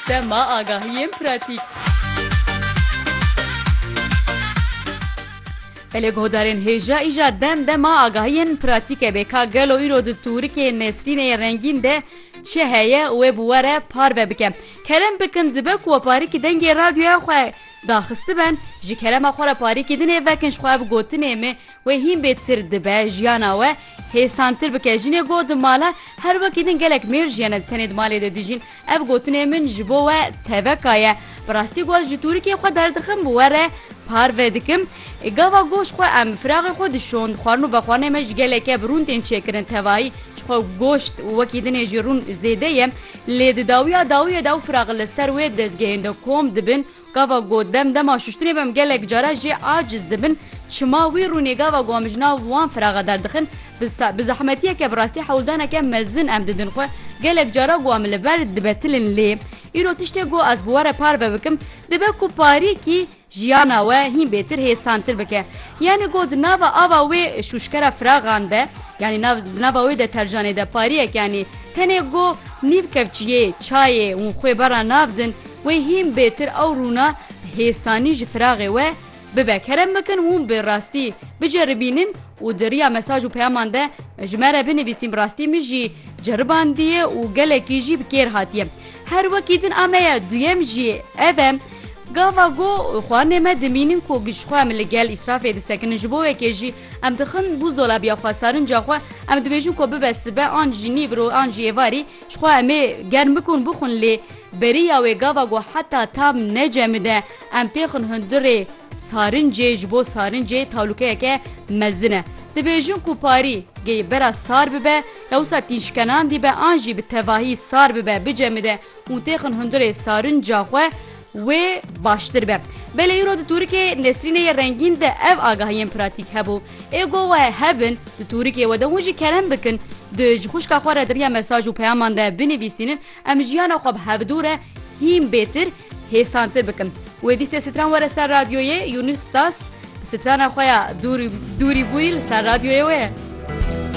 Dema agahiyên pratîk. Belê guhdarên hêja îja dem dema agahiyên pratîke bê ka gelo îro di tûrikê Nesrînê rengîn de çi heye wê bi we re parve bike. Kerem bikin dibe ku we parîkî dengê radyoya xwe daxistiben ji kerema xwe re parîkî dinê vekin ji xwe ev gotinê me Wê hîn bê tir dibe jiyana we hêsantir bike. Jinê got di mala her wekî din gelek mêr jiyene di tenê di malê de dijîn. Ev gotinê min ji bo we teveka ye. Bi rastî ku ez ji tûrikê xwe derdixim bi we re parve dikim. Gava goş xwe em firaxê xwe dişon. Xwarin û vexwarinê me ji geleke bi rûn tên çêkirin. Tevayî ji xwe goşt û wekî dinê jî rûn zêde ye. Lê di dawiya dawiyê de ew firax li ser wê dezgehên de kom dibin. Gava ku dem dema şuştinê be em gelek care jê aciz dibin, çima wî rûnê gava ku em ji nav wan firaxe derdixin, bi bi zehmetiyeke bi rastî hewldaneke mezin em didin xwe, gelek care ku em li ber dibetilin lê îro tiştê ku ez bi we re parve bikim dibe ku parîkî jiyana we hîn bêtir hêsantir bike. Yanî ku di nava ava wê şûşkera firaxan de, yanî nav di nava wê de tercanê de pariyek yanî tenê ku nîv kevçiyê, çayê û xwê berra nav din, Wê hîn bêtir ew rûna hêsanî ji firaxê we bibe. Kerem bikin hûn bi rastî biceribînin û di riya mesaj û peyaman de ji me re binivîsîn bi rastî min jî ceribandiye û gelekî jî bi kêr hatiye. Her wekî din a me ye duyem jî ev e gava ku xwarinê me dimînin ku ji xwe em li gel îsrafê disekinin ji bo yekê jî em dixin bûzdolabiya xwe serinca xwe em dibêjin ku bibe sibe an jî nîvro an jî êvarî Jixwe em ê germ bikun bixwin lê beriya wê gava ku heta tam necemide em têxin hundirê sarincê ji bo sarincê talûkeyeke mezin e. Dibêjin ku parî gê bera sar bibe ya wisa tînşkenan dîbe an jî bi tevahî sar bibe bicemide û têxin hundirê sarinca xwe wê baştir be. Belê îro di tûrikê Nesrînê yê rengîn de ev agahiyên pratîk hebû. Ê go we hebin, di tûrikê we de hûn jî kerem bikin, di ji xwişka xwe re di riya mesaj û peyaman de binivîsînin, em jiyana xwe bi hevdû re hîn bêtir, hêsantir bikin. Wê dîsê stran were ser radyoyê, Yûnus Stas bi strana xwe ya dûrî bûrî li ser radyoyê wê ye.